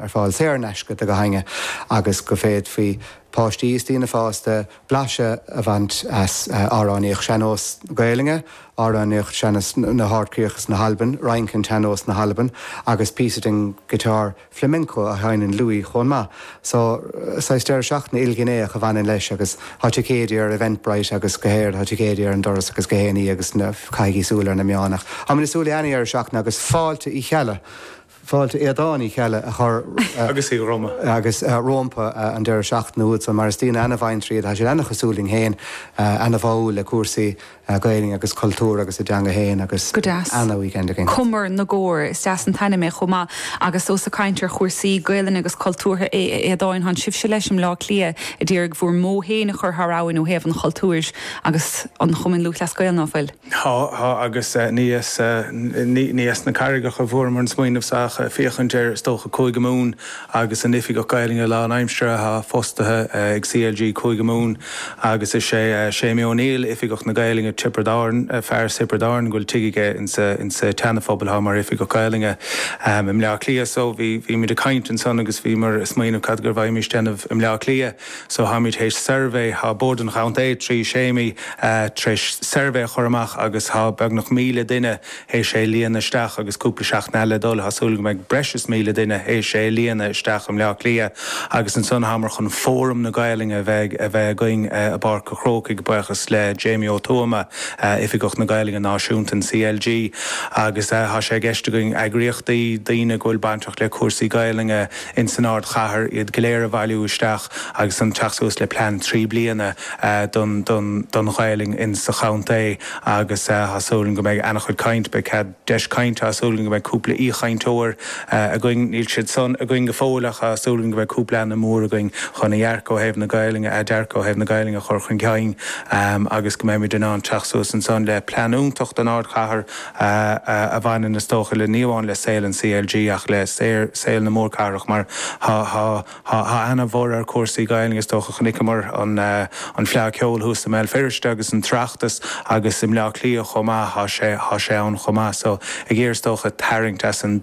ar fáil saor in aisce do gach éinne agus go bhféadfadh páistí is daoine fásta blaiseadh a bhaint as amhránaíocht sean-nós na Gaelainne, amhránaíocht sean-nós na nGarbhchríoch is na hAlban, rince sean-nós na hAlban agus píosa den guitar flamenco a sheinneann Louis chomh maith. So, saghas deireadh seachtaine ilghnéitheach a bhaineann leis agus tá ticéidí ar Eventbrite agus beidh ticéidí ar an doras agus go héNí agus caithigí súil ar na meáin ach táimid ag súil le an-dheireadh seachtaine agus fáilte Uí Cheallaigh! Fáilte Aodhán Uí Cheallaigh a chur agus rómpa an deireadh seachtaine úd san mar is daoine ana-ghnaíúil iad tá siad ana-chosúil linn fhéin, ana-bháúil le cúrsaí Gaelainne agus cultúr agus a dteanga fhéin agus Go deas. ana-weekend againn. Cumar na gCór. Is deas an t-ainm é chomh maith agus ós ag caint ar chúrsaí Gaelainne agus cultúrtha é, a Aodháin, thán sibhse leis i mBleá Cliath a d'iarraidh bhúr mbó fhéin a chur thar abhainn ó thaobh an chultúir agus an Chumainn Lúthchleas Gael, ná fuil? Tá, tá, agus muis, muis na Carraigeacha fuaireamar an smaoineamh seo ag féachaint ar, is dócha, Cúige Mumhan agus an t-oifigeach Gaelainne lánaimseartha atá fostaithe ag CLG Cúige Mumhan agus is é Séimí O'Neill, oifigeach na Gaelainne, Tiobraid Árann, fear Thiobraid Árann, go bhfuil tigh aige insa, insa tSeanaphobal, thá, mar oifigeach Gaelainne i mBleá Cliath. So bhí, bhímid ag caint ansan agus bhíomar ag smaoineamh cad go bhféadfaimís a dhéanamh i mBleá Cliath. So táimid théis suirbhé, tá Bord an Chontae, trí Sheimí, tréis suirbhé a chur amach agus tá beagnach míle duine théis é a líonadh isteach agus cúpla seachtain eile le dul. Tá súil go mbeidh breis is míle duine théis é a líonadh isteach i mBleá Cliath agus ansan táimid chun Fóram na Gaolainne a bheith a bheith againn i bPáirc a' Chrócaigh, buíochas le Jamie Ó Tuama, Oifigeach na Gaolainne Náisiúnta in CLG agus tá sé i gceist againn eagraíochtaí, daoine go bhfuil bainteach le cúrsaí Gaolainne, ins an ardchathair, iad go léir a bhailiú isteach agus an teacht suas le plean trí bliana don Ghaolainn ins sa chontae agus tá súil agam go mbeidh ana-chuid caint, beidh cead, deis cainte, tá súil agam go mbeidh cúpla aoichainteoir againn, níl siad socair againn go fóill ach tá súil agam go mbeidh cúpla ainm mór againn chun a dhearcadh ó thaobh na Gaolainne, a dearcadh ó thaobh na Gaolainne a chur chun cinn agus go mbeimid in ann teacht suas ansan le plean iontach don ardchathair a bhaineann, is dócha, ní hamháin le saol an CLG ach le saol na mórcathrach mar tá ana-bhorradh ar chúrsaí Gaelainne. Is dócha, chonaiceamar an Fleadh Cheoil thuas i mBéal Feirste agus an tOireachtas agus i mBleá Cliath chomh maith, tá sé ann chomh maith so ag iarraidh, is dócha, tarraingt as san.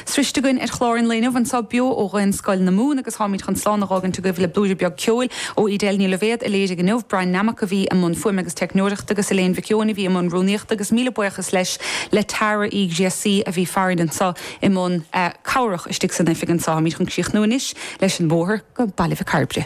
Sroichte againn ar chlár an lae inniu, anso beo ó Dhaonscoil na Mumhan, agus táimid chun slán a dh'fhágaint agaibh le blúire beag ceoil ó Edel Ní Loibhéad, a léirigh inniu, Bryan Nammock a bhí i mbun fuaime agus teicneoireachta, agus Elaine Mhic Eoin a bhí i mbun rúnaíochta, agus míle buíochas leis le Tara Uí Ghríofa a bhí farainn anso i mbun cabhrach istigh san oifig anso. Táimid chun críochnú anois leis an mBóthar go Baile Mhic Cairbre.